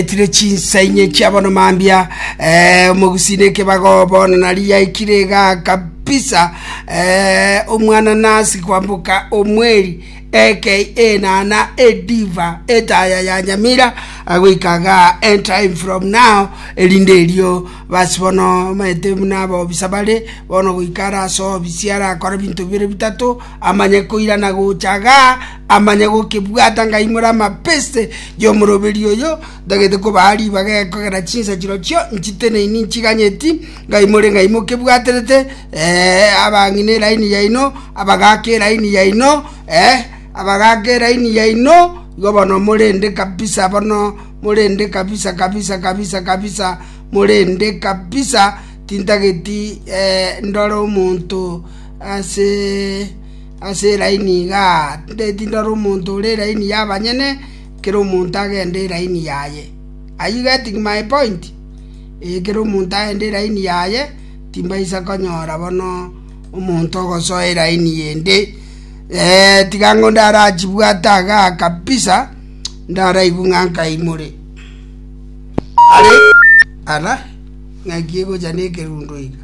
Aretire chinsa inye chia bono mambia, eh, omogusii na ekebago, bono nari yaikire iga kabisa, eh, omwananasi kwamboka omweri, aka enana, ediva, etaya ya nyamira, agoika iga end time from now, erinde erio basi bono maete buna abobisa bare, bono goika arase obisi arakore binto bibere bitato, amanye koirana gocha gaa, amanye gokebwata ng'a imore amapeste y'omoroberi oyo, ntagete kobaa ribaga ekogera chinsa chirochio nchiteneini nchiganyeti, ng'a imore ng'ai mokebwaterete, ee, abang'ina eraini yaino, abagaaka eraini yaino, ee, abagaaka eraini yaino, igo bono morende kabisa bono, morende kabisa kabisa kabisa kabisa, morende kabisa, tintageti ndore omonto. ase eraini iga, tindeti ndore omonto ore eraini y'abanyene, kera omonto agende eraini yaye. Are you getting my point? Ee, kera omonto agende eraini yaye, timbaisa konyora bono omonto ogosoa eraini ende. Ee, tiga ang'o ndarachibwate iga kabisa, ndaraigwe ng'a nkaimore. Are, ala, ng'aki egocha nekerundo iga.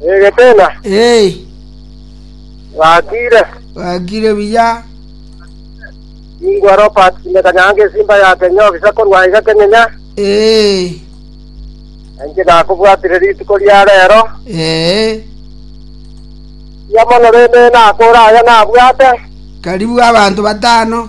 Eh, Getena, Hey, wakire. wakire buya. Ingwa Robert Simekanyanga esimba ya Kenya obisa korwa iga Kenyenya. Hey, Enche nakobwatire rituko ria rero. eh, Ya mono rende nakora aya nabwate. karibu abanto batano.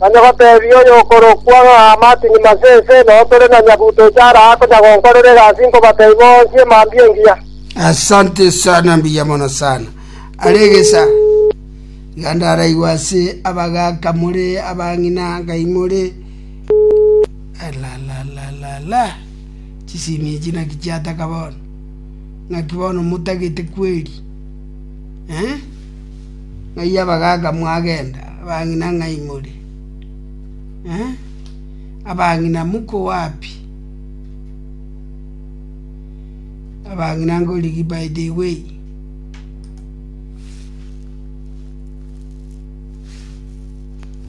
Onye goteebia oyokorokwa ng'a Martin Masese, noo tore na nyabuto ochara aa konya gonkorera egasi inkobatebia boonsie mambia engiya. Asante sana mbuya mono sana are egesa iga ndaraigwa ase abagaka more abang'ina ngai more alalalala chisimi echi naki chiataka bono ng'aki bono motagete kweri eh? Ng'ai abagaaka mwagenda, abang'ina ng'ai more? Abang'ina mokoa pi? Abang'ina ngorigi by the way?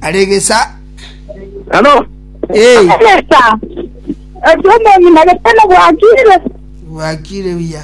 Are gesa. Hello. Hey. Sasa ekiomong'ina getene bwakire bwakire buya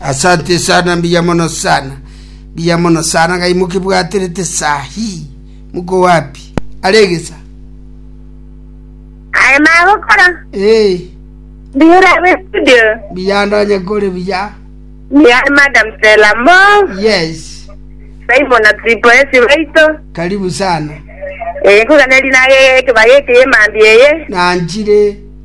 Asante sana, mbuya mono sana, mbuya mono sana gai mokebwaterete saa hii. Muko wapi? Are egesa? Aye magokora. Ee, Mbuya ore abe studio. mbuya ndonye kore buya. Mbuya ore Madam Stella Mo. Yes, Simon Atripo esi baito. karibu sana. Eh, nkugane rina ye kebage eke ye mambi eye. Nanchire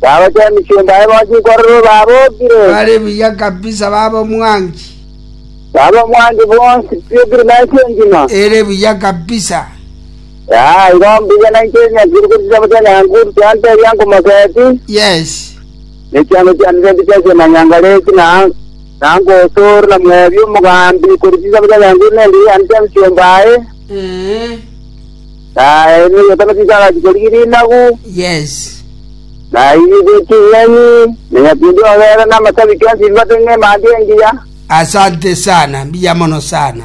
Bagocha emechando yaye bonsi nkororo babokire. Bare buya kabisa baba omwangi. Baba omwangi bonsi biokire na ense engima. Ere buya kabisa. Aa, igo mbuya na inche nyakire korwa chisambo chia Nyankuru chianto eria nkomoseti. Yes. Ne chianto chiane chende chiasia na Nyangaleti na na Nkosoro na Mwebi omogambi korwa chisambo chia Nyankuru nende yane chia emechomba yaye. Eh. Na egesaku nigo agacha korigi rinagu, Yes. na airigwe ching'eni, na nyakindi obeera namasabi chionsi bibate ng'emanti engiya. Asante sana, mbuya mono sana.